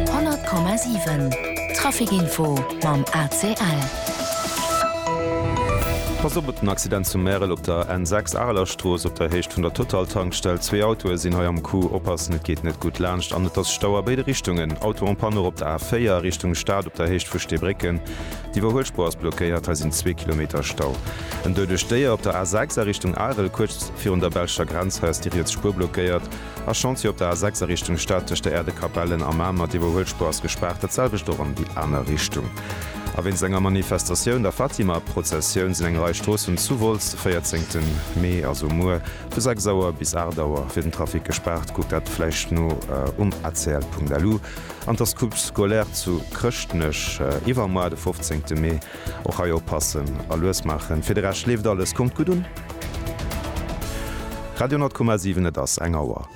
100,7 Trafic Info mam ACL. Pass op op den Accident zu Märel op der N6 Arelerstrooss op der Héicht vun der Total-Tankstell. Zwee Autoe sinn hei am Coup. Oppassen, et geet net gutt laanscht an et ass Stau a béide Richtungen. Auto en panne och op der A4 Richtung Stad op der Héicht vu Steebrécken. D'Iwwerhuelspuer ass blockéiert, hei sinn zwee Kilometer Stau. En doudecht Déier op der A6 a Richtung Arel, kuerz virun der belscher Grenz. Hei ass déi riets Spuer blockéiert. A Chantier op der A 6 a Richtung Stad tëscht der Aire de Capellen a Mamer. Déi Iwwerhuelspur ass gespaart, dat selwecht och an déi aner Richtung. A wéinst enger Manifestatioun, der Fatima-Prozessioun, sinn eng Rei Stroossen zu Wolz de 14 Mee, also muer, vu 6 Auer bis 8 Auer fir den Trafic gespaart. Kuckt dat vläicht no um acl.lu. An d'Escoupe scolaire zu Chrëschtnech iwwermoar, de 15 Mee. Och hei oppassen a lues maachen. Fir de Rescht leeft alles. Kommt gutt un. Radio 10,7 Et ass eng Auer.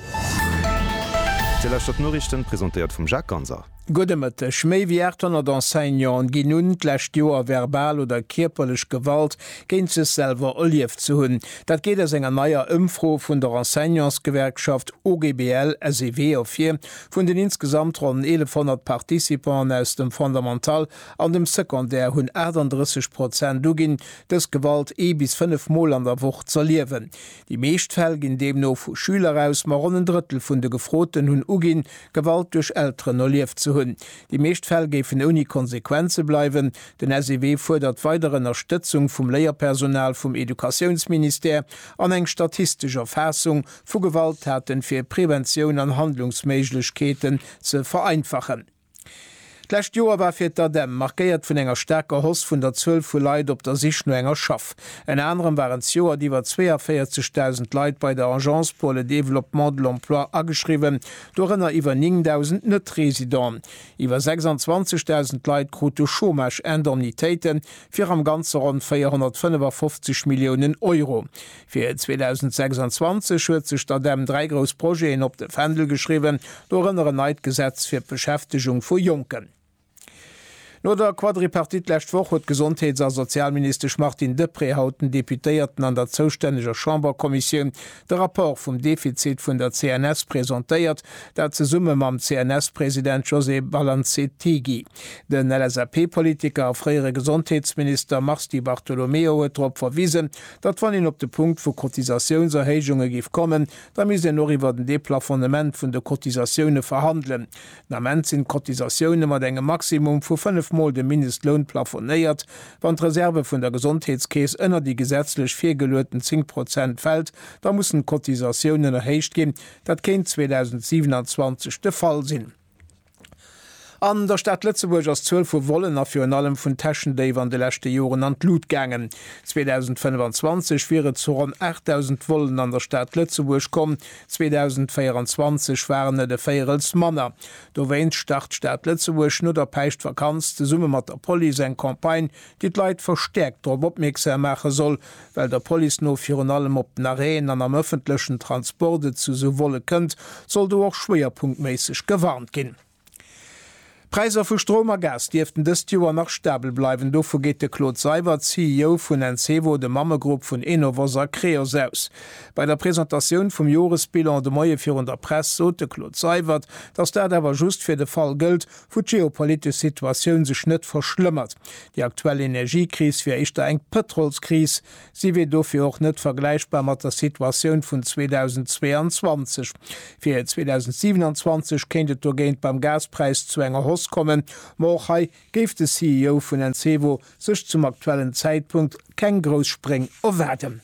Dir lauschtert d'Noriichten, presentéiert vum Jacques Ganser. Gudde Mëtteg. Méi wéi 800 Enseignanten ginn un, d'lescht Joer verbal oder kierperlech Gewalt géint sech selwer erlieft ze hunn. Dat geet aus enger neier Ëmfro vun der Enseignantsgewerkschaft OGBL-SEW ervir. Vun den insgesamt ronn 1.100 Participanten aus dem Fondamental An dem Secondaire hunn 38 Prozent uginn, dës Gewalt ee bis fënnef Mol an der Woch z'erliewen. Déi meescht Fäll ginn deemno vu Schüler aus, ma ronn en Drëttel vun de Gefroten hunn uginn, Gewalt duerch Elteren erlieft ze hunn. Déi meescht Fäll géifen ouni Konsequenze bleiwen. Den SEW fuerdert weider Ënnerstëtzung vum Léierpersonal, vum Educatiounsministère an eng statistesch Erfaassung vu Gewalttaten, fir Preventioun an Handlungsméiglechkeeten ze vereinfachen. D'lescht Joer war fir d'ADEM markéiert vun enger staarker Hausse vun der Zuel vu Leit op der Sich no enger Schaff. Ënner anerem waren d'Joert iwwer 42.000 Leit bei der Agence pour le développement de l'emploi ageschriwwen, dorënner iwwer 9.000 Net-Residenten. Iwwer 26.000 Leit krute Chômage-Indemnitéiten fir am Ganze ronn 455 Milliounen Euro. Fir 2026 huet sech d'ADEM dräi grouss Projeten op de Fändel geschriwwen, dorënner en neit Gesetz fir d'Beschäftegung vu Jonken. No der Quadripartite d'lescht Woch huet d'Gesondheets a Sozialministesch Martine Deprez haut den Deputéierten an der zoustänneger Chamberkommissioun de Rapport vum Defizit vun der CNS presentéiert, dat zesumme mam CNS-President José Balanzettigi. Den LSAP-Politiker a fréiere Gesondheetsminister Mars Di Bartolomeo huet drop verwisen, datt wann een op de Punkt vu Cotisatiounserhéijunge géif kommen, da misst een och iwwer den Deplafonnement vun de Cotisatioune verhandelen. Den Ament sinn d'Cotisatioune mat engem Maximum vu fënnef Mol dem Mindestloun plafonéiert. Wann d'Reserve vun der Gesondheetskeess ënner déi gesetzlech virgelueten 10 Prozent fält, da mussen d'Cotisatiounen erhéicht ginn. Dat kéint 2027 de Fall sinn. An der Stad Lëtzebuerg ass d'Zuel vu Vollen a virun allem vun Täschendéif an de leschte Joren an d'Lut gaangen. 2025 wier et zu ronn 8.000 Vollen an der Stad Lëtzebuerg komm, 2024 waren et e Véierels manner. Dowéinst start d'Stad Lëtzebuerg no der Päischtvakanz zesumme mat der Police eng Campagne, déi d'Leit verstäerkt drop opmierksam maache soll, well der Police no virun allem op den Arrêten an am ëffentlechen Transport et zu esou Volle kënnt, soll do och schwéierpunktméisseg gewarnt ginn. D'Präisser vu Strom a Gas dierften dëst Joer nach stabel bleiwen, dovu geet de Claude Seibert, CEO vun Encevo, dem Mammegrupp vun Enovos a Creos, aus. Bei der Presentatioun vum Joresbilan de Moie virun der Press sot de Claude Seibert, datt dat awer just fir de Fall gëllt, wou d'geopolitesch Situatioun sech net verschlëmmert. Déi aktuell Energiekris wier éischter eng Pëtrolskris. Si wier dofir och net vergläichbar mat der Situatioun vun 2022. Fir 2027 kéint et dogéint beim Gaspräis zu enger Hausse kommen, ma och hei géif de CEO vun Encevo sech zum aktuellen Zäitpunkt keng grouss Spréng erwaarden.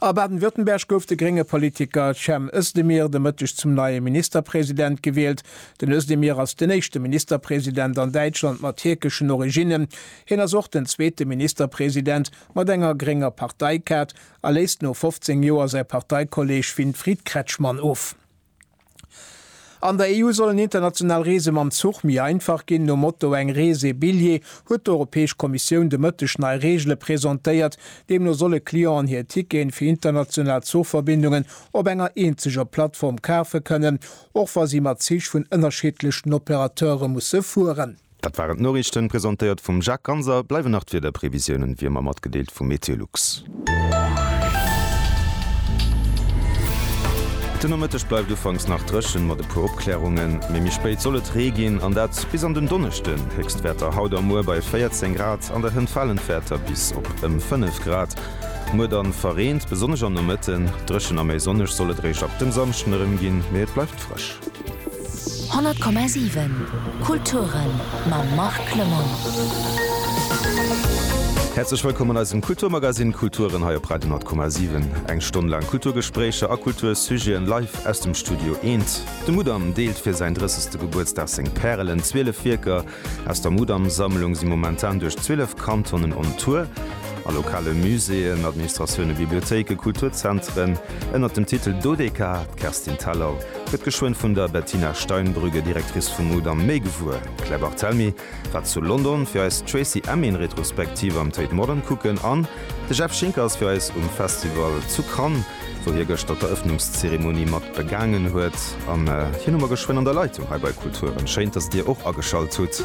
A Baden-Württemberg gouf de grénge Politiker Cem Özdemir de Mëtteg zum neie Ministerpresident gewielt. Den Özdemir ass den éischte Ministerpresident an Däitschland mat tierkeschen Originnen. Hien ass och den zweete Ministerpresident mat enger grénger Parteikaart a léisst no 15 Joer säi Parteikolleeg Winfried Kretschmann of. An der EU sollen international Reese mam Zuch méi einfach ginn. Nom Motto Eng Rees, ee Billjee huet d'Europäesch Kommissioun de Mëtteg nei Reegele presentéiert. Deemno solle Clienten hir Ticketen fir international Zuchverbindungen op enger eenzeger Plattform kafe kënnen, och wa si mat Zich vun ënnerschiddlechen Operateure musse fueren. Dat waren d'Noriichten, presentéiert vum Jacques Ganser. Bleiwen nach d'Wiederprevisiounen, wéi ëmmer, matgedeelt vum Meteolux. Den Nomëtteg bleift ufanks nach dréchen, mat e puer Opklärungen, mee méi spéit soll et Ree ginn, an dat bis an den Donneschden. Héchstwäerter haut a muer bei 14 Grad, an der Hënt falen d'Wäerter bis op ëm 5 Grad. Muer dann verreent, besonnesch am Nomëtten. Dréchen a méi sonneg soll et eréischt ab dem Samschden erëm ginn, mee et bleift frësch. 100,7 Kulturen mam Marc Clement. Häerzlech wëllkomm an eisem Kulturmagazine Kulturen hei op Radio 10,7. Eng Stonn laang Kulturgespréicher a Kultursujeten live aus dem Studio Eent. De Mudam deelt fir säin 30. Gebuertsdag seng Pärelen, 12 Wierker, Aus der Mudam-Sammlung si momentan duerch 12 Kantonen on Tour a lokale Muséeën, Administratioune, Bibliothéike, Kulturzentren ënner dem Titel Dodeka. D'Kerstin Thalau gëtt geschwënn vun der Bettina Steinbrügge, Directrice vum Mudam, méi gewuer. Claire Barthelmy war zu London fir eis d'Tracey Emin Retrospektiv am Tate Modern kucken an de Jeff Schinker ass fir eis um Festival zu Cannes. wou hie gëschter d'Erëffnungszeremonie mat begaangen huet. An hien hu mer geschwënn an der Leitung hei bei Kulturen. Schéin, dass Dir och ageschalt hutt.